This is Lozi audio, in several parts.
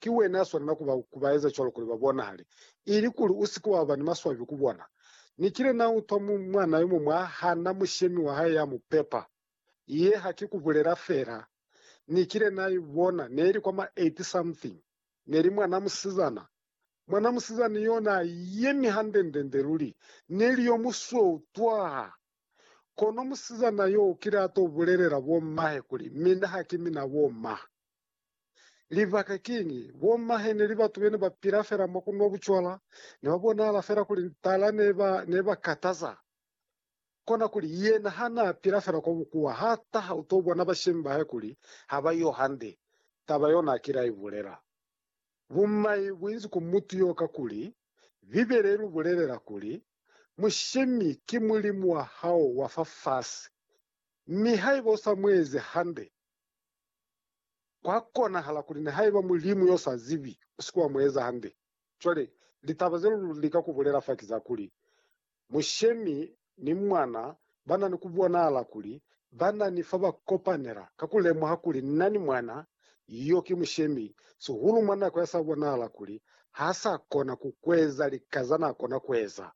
Ki wena ya swanela ku ba ku ba eza cwalo kuli ba bonahale, ili kuli u si ke wa ba ni maswabi ku bona. Ni kile na utwa mu, mwana yo muñwi a hana mushemi wa hae ya mu pepa. Ye ha ki ku bulela fela. Ni kile na i bona, ne li kwa ma eight something. Ne li mwana musizana. Mwana musizana yo na yemi handendende luli, ne li yo musweu twaa. Kono musizana yo u kile a to bulelela bo mahe kuli, Mina ha ki mina bo ma. Libaka kiñi? Bommahe neli batu bene ba pila fela mwa ku nwa bucwala, ne ba bonahala fela kuli ntala ne ba ne ba kataza. Kona kuli, yena ha n'a pila fela kwa bukuwa, h'a taha u t'o bona bashemi ba hae kuli ha ba yo hande. Taba yo n'a kile a i bulela. Bumai bu inzi ku mutu yo kakuli, Bibele i lu bulelela kuli, Mushemi ki mulimu wa hao wa fafasi. Mi haiba u sa mu ezi hande, Kwa konahala kuli nihaiba Mulimu yo sa zibi u si ke wa mu eza hande. Cwale, litaba ze lu lika ku bulela fa ki za kuli, Mushemi ni Mwana ba na ni ku bonahala kuli ba na ni fa ba kopanela ka ku lemuha kuli Nna ni Mwana yo ki Mushemi, sihulu mwa nako ya sa bonahala kuli ha sa kona ku kueza lika za na kona ku eza.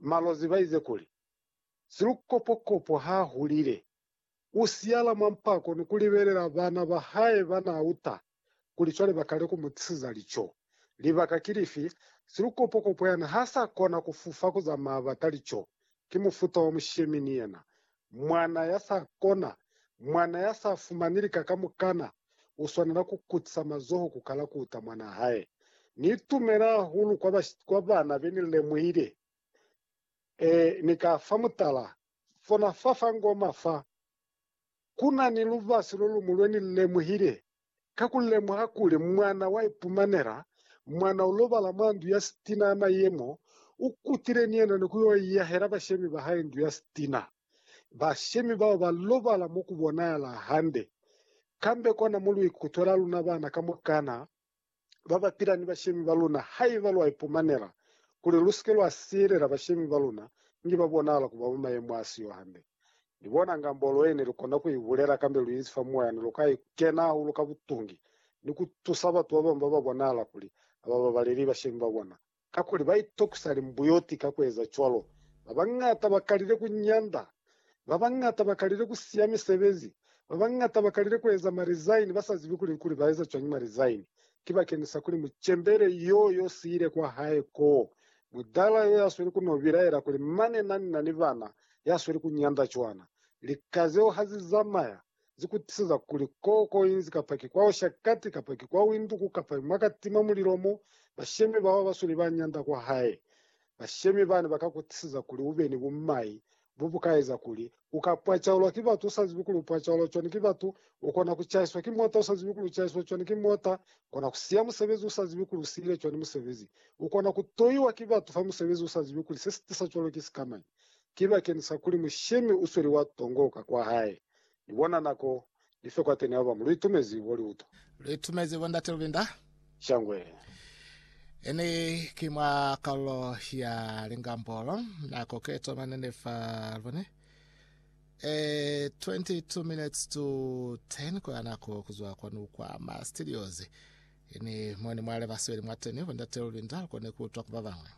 Malozi ba ize kuli, Silukopokopo ha hulile. U siyala mwa mpako ni ku libelela bana ba hae ba n'a uta kuli cwale ba kale ku mu tisiza lico. Libaka ki lifi? Silukopokopo yani ha sa kona ku fufa ku zamaya bata lico. Ki mufuta wa mushemi ni yena. Mwana ya sa kona, mwana ya sa fumani lika kamukana, u swanela ku kutisa mazoho ku kala ku uta mwana hae. Ni itumela hahulu kwa, kwa bana be ni lemuhile. Ee, ni ka fa mutala. fona fa fa ngoma fa, ku na ni lubasi lo luñwi lwe ni lu lemuhile, ka ku lemuha kuli mwana wa ipumanela mwana u lobala mwa ndu ya sitina na ye mo u kutile ni yena ni ku yo iyahela bashemi ba hae ndu ya sitina. Bashemi bao ba lobala mo ku bonahala hande. Kambe kona mo lu ikutwela luna bana kamukana. ba ba pila ni bashemi ba luna haiba lwa ipumanela kuli lu si ke lwa siyelela bashemi ba luna inge ba bonahala ku ba mwa mayemo a si yo hande. Ni bona nga mbolo ye ne lu kona ku i bulela kambe lu inzi fa moya ne lu ka kena hahulu ka butungi ni ku tusa batu ba bañwi ba ba bonahala kuli ha ba babaleli bashemi ba bona. Kakuli ba itokusa limbuyoti ka ku eza cwalo. Ba bañata ba kalile ku nyanda. Ba bañata ba kalile ku siya misebezi. Ba bañata ba kalile ku eza marizaini ba sa zibi kuli, kuli ba eza cwañi marizaini. Ki bakeni sa kuli mucembele yo yo siile kwa hae koo, mudala yo ya sweli ku no bilaela kuli, Mane na ni na ni bana, ya sweli ku nyanda cwana. Lika zeo ha zi zamaya. Zi kutiseza kuli ko ko inzi kapa ki kwa osha kati kapa ki kwa winduku kapa mwa ka tima mulilo mo bashemi bao ba basweli ba nyanda kwa hae. Bashemi bani ba ka kutiseza kuli u be ni bumai bo bu ka eza kuli u ka pwacaulwa ki batu u sa zibi kuli u pwacaulwa cwani ki batu, u kona ku caiswa ki mota u sa zibi kuli u caiswa cwani ki mota, kona ku siya musebezi u sa zibi kuli u siyile cwani musebezi, u kona ku toiwa ki batu fa musebezi u sa zibi kuli se si tisa cwalo ki sikamañi. ki bakeni sa kuli mushemi u sweli wa tongo ka kwa hae. Ni bona nako ni fe kwateni haba mu lu itumezi bo liuto. Lu itumezi bo Ndate Lubinda. Shangwe. Ini ki mwa kalulo ya Lingambolo. Nako ke tomane ni fa lubone. Eh, 22 minutes to 10 kwa nako kuzwa kwanu kwa ma studios. Ini moni mwale basweli mwateni bo Ndate Lubinda lukone kuutwa ku babangwe.